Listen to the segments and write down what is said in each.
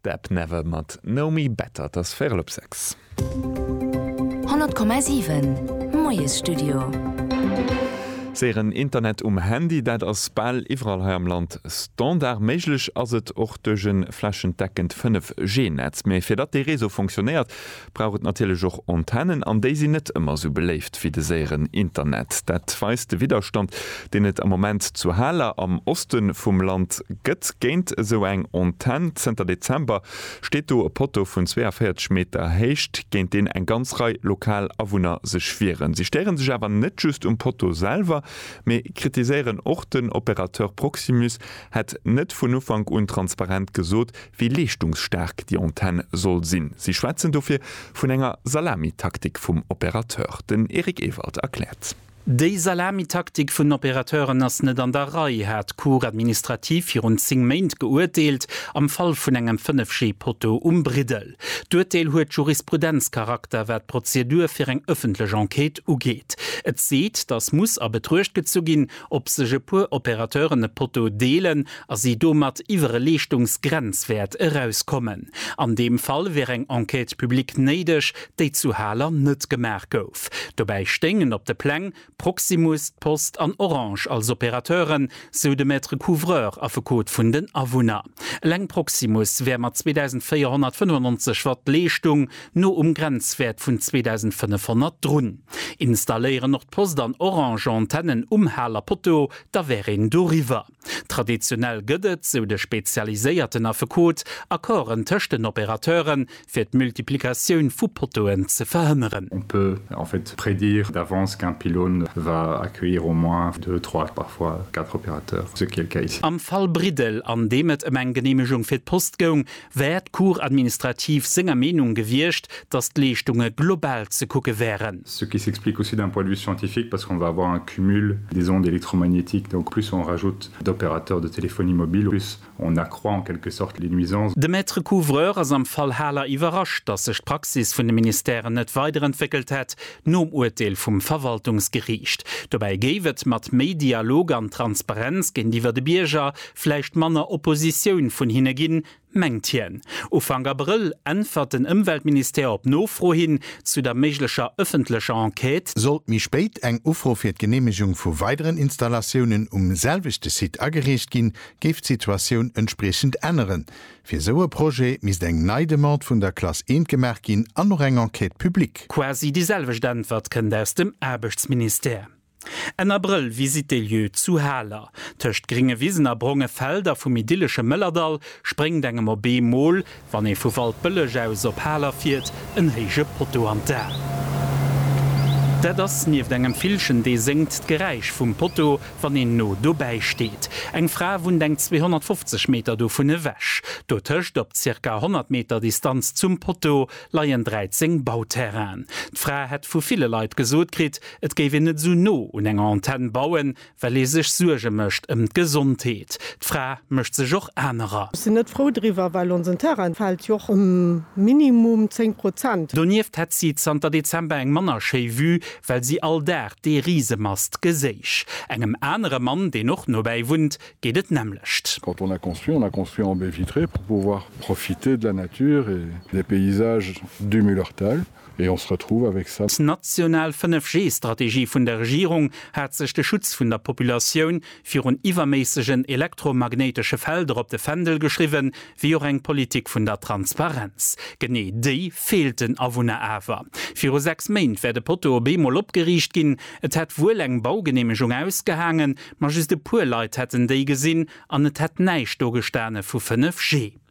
Deb Never mat Know Me Better. Et ass véierel op sechs. 100,7 Moiesstudio. Séieren Internet um Handy, dat ass bal iwwerall hei am Land Standard. Méiglech ass et och duerch e flächendeckend 5G-Netz. Mee fir datt dee Réseau funktionéiert, brauch et natierlech och Antennen, an déi sinn net ëmmer esou beléift wéi de séieren Internet. Dat weist de Widderstand, deen et am Moment zu Haler am Oste vum Land gëtt géint esou eng Antenn. Zënter Dezember steet do e Potto vun 42 Meter Héicht, géint deen eng ganz Rei lokal Awunner sech wieren. Si stéiere sech awer net just um Potto selwer, mee kritiséieren och den Opérateur Proximus, hätt net vun Ufank un transparent gesot, wéi leeschtungsstaark déi Antenn soll sinn. Si schwätzen dofir vun enger Salamitaktik vum Opérateur. Den Eric Ewald erkläert. Déi Salamitaktik vun den Opérateuren ass net an der Rei, hat d'Cour administrative virun 10 Méint geuerteelt am Fall vun engem 5G-Potto um Briddel. D'Uerteel huet Jurisprudenzcharakter, wat d'Prozedur fir eng ëffentlech Enquête ugeet. Et seet, dass muss a Betruecht gezu ginn, Ob sech e puer Opérateuren e Potto deelen a si domat iwwer e Leeschtungsgrenzwäert erauskommen? An deem Fall wier eng Enquête publique néideg, déi zu Haler net gemaach gouf. Dobäi stéingen op de Pläng Proximus, d'Post an Orange als Opérateuren, sou de Maître couvreur, Affekot vun den Awunner. Eleng Proximus wär mat 2.495 Watt Leeschtung no um Grenzwäert vun 2.500 drun. Installéieren Nordpost an Orange Antennen um Haler Poteau, da wär een doriwwer. Traditionell gëtt et, sou de spezialiséierten Affekot, Accorden tëscht den Opérateure fir d'Multiplikatioun vu Poteauen ze verhënneren. On peut en fait prédire d'avance qu'un pylône va accueillir au moins deux, trois, parfois quatre opérateurs, ce qui est le cas ici. Am Fall Briddel, an deem et ëm eng Geneemegung fir d'Post goung, wär d'Cour administrative senger Meenung gewiescht, datt d'Leeschtunge global ze kucke wären. Ce qui s'explique aussi d'un point de vue scientifique parce qu'on va avoir un cumul des ondes électromagnétiques, donc plus on rajoute d'opérateurs de téléphonie mobile, plus on accroît en quelque sorte les nuisances. De Maître couvreur ass am Fall Haler iwwerrascht, datt sech d'Praxis vun de Ministèren net weiderentwéckelt hätt nom Urteel vum Verwaltungsgeriicht. Dobäi géif et mat méi Dialog an Transparenz géintiwwer de Bierger Vläicht manner Oppositioun vun hinne ginn, mengt hien. Ufank Abrëll äntwert den Ëmweltministère op Nofro hin zu der méiglecher ëffentlecher Enquête. Sollt méi spéit eng Ufro fir d'Geneemegung vu weideren Installatiounen um selwechte Site agereecht ginn, géif d'Situatioun entspriechend änneren. Fir esou e Projet misst eng nei Demande vun der Classe I gemaach ginn an och eng Enquête publique. Quasi déi selwecht Äntwert kënnt aus dem Aarbechtsministère. Enn Abrëll, Visite des lieux zu Haler. Tëscht gringe Wisen a bronge Felder vum idyllesche Mëllerdall spréngt engem op ee Mol, wann ee vu Waldbëlleg aus op Haler fiert, en héije Potto an d'A. Dat ass nieft engem Villchen, dee séngt, d'Geräisch vum Potto, wann een no dobäi steet. Eng Fra wunnt eng 250 Meter dovun ewech. Dotëscht, op zirka 100 Meter Distanz zum Potto, leien 13 Bauterrainen. D'Fra hätt vu ville Leit gesot kritt, Et géif een net esou no un enger Antenn bauen, well ee sech Suerge mécht ëm d'Gesondheet. D'Fra mécht sech och anerer. Ech sinn net frou driwwer, well onsen Terrain fält jo och ëm minimum 10 Prozent. Donieft hätt si zanter Dezember eng manner schéi Vue, well si all Dag dee Risemast geséich. Engem anere Mann, deen och nobäi wunnt, geet et d'nämmlecht. Quand on a construit, on a construit en baies vitrées pour pouvoir profiter de la nature et des paysages du Mullerthal. Et on se retrouve avec ça. D'national 5G-Strategie vun der Regierung hat sech de Schutz vun der Populatioun virun iwwerméissegen elektromagnéitesche Felder op de Fändel geschriwwen, wéi och eng Politik vun der Transparenz. Genee déi feelt den Awunner awer. Viru sechs Méint wär de Poteau op eemol opgeriicht ginn. Et hätt wuel eng Baugeneemegung ausgehaangen, ma just e puer Leit hätten déi gesinn an et hätt näischt do gestane vu 5G.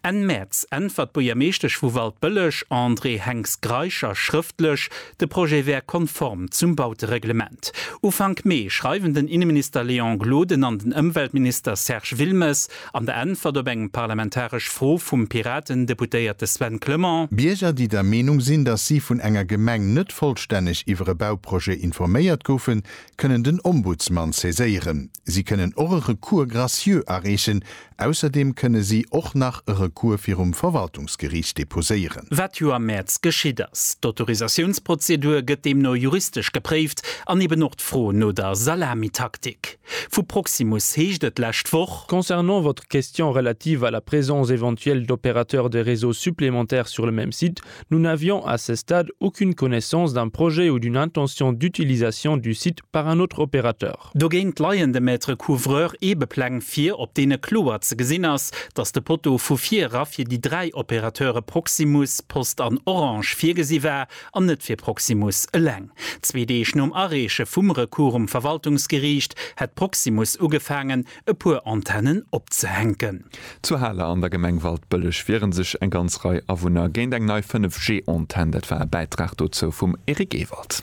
Enn Mäerz äntwert d'Buergermeeschtesch vu Waldbëlleg, Andrée Henx-Greischer, schrëftlech, de Projet wär konform zum Bautereglement. Ufank Mee schreiwen den Inneminister Léon Gloden an den Ëmweltminister Serge Wilmes an der Äntwert op eng parlamentaresch Fro vum Piraten-Deputéierte Sven Clement, Bierger, déi der Meenung sinn, datt si vun enger Gemeng net vollstänneg iwwer e Bauprojet informéiert goufen, kënnen den Ombudsman saiséieren. Si kënnen och e Recours gracieux areechen, Ausserdeem kënne si och nach e Recours virum Verwaltungsgeriicht deposéieren. Wat jo am Mäerz geschitt ass. D'Autorisatiounsprozedur gëtt deemno juristesch gepréift an eben och d'Fro no der Salamitaktik. Vu Proximus heescht et d'lescht Woch. Concernant votre question relative à la présence éventuelle d'opérateurs de réseaux supplémentaires sur le même site, nous n'avions à ce stade aucune connaissance d'un projet ou d'une intention d'utilisation du site par un autre opérateur. Park. Dogéint leien de Maître Couvreur Eebepläng vir, op deene kloer ze gesinn ass, datt de Potto vu vir era fir déi dräi Opérateure Proximus, Post an Orange virgesi war an net fir Proximus eleng. Zwee Deeg nom Areeche vum Recours um Verwaltungsgeriicht hätt Proximus ugefaangen, e puer Antennen opzehänken. Zu Haler an der Gemeng Waldbëlleg wiere sech eng ganz Rei Awunner géint eng nei 5G-Antenn. Dat war e Bäitrag dozou vum Eric Ewald.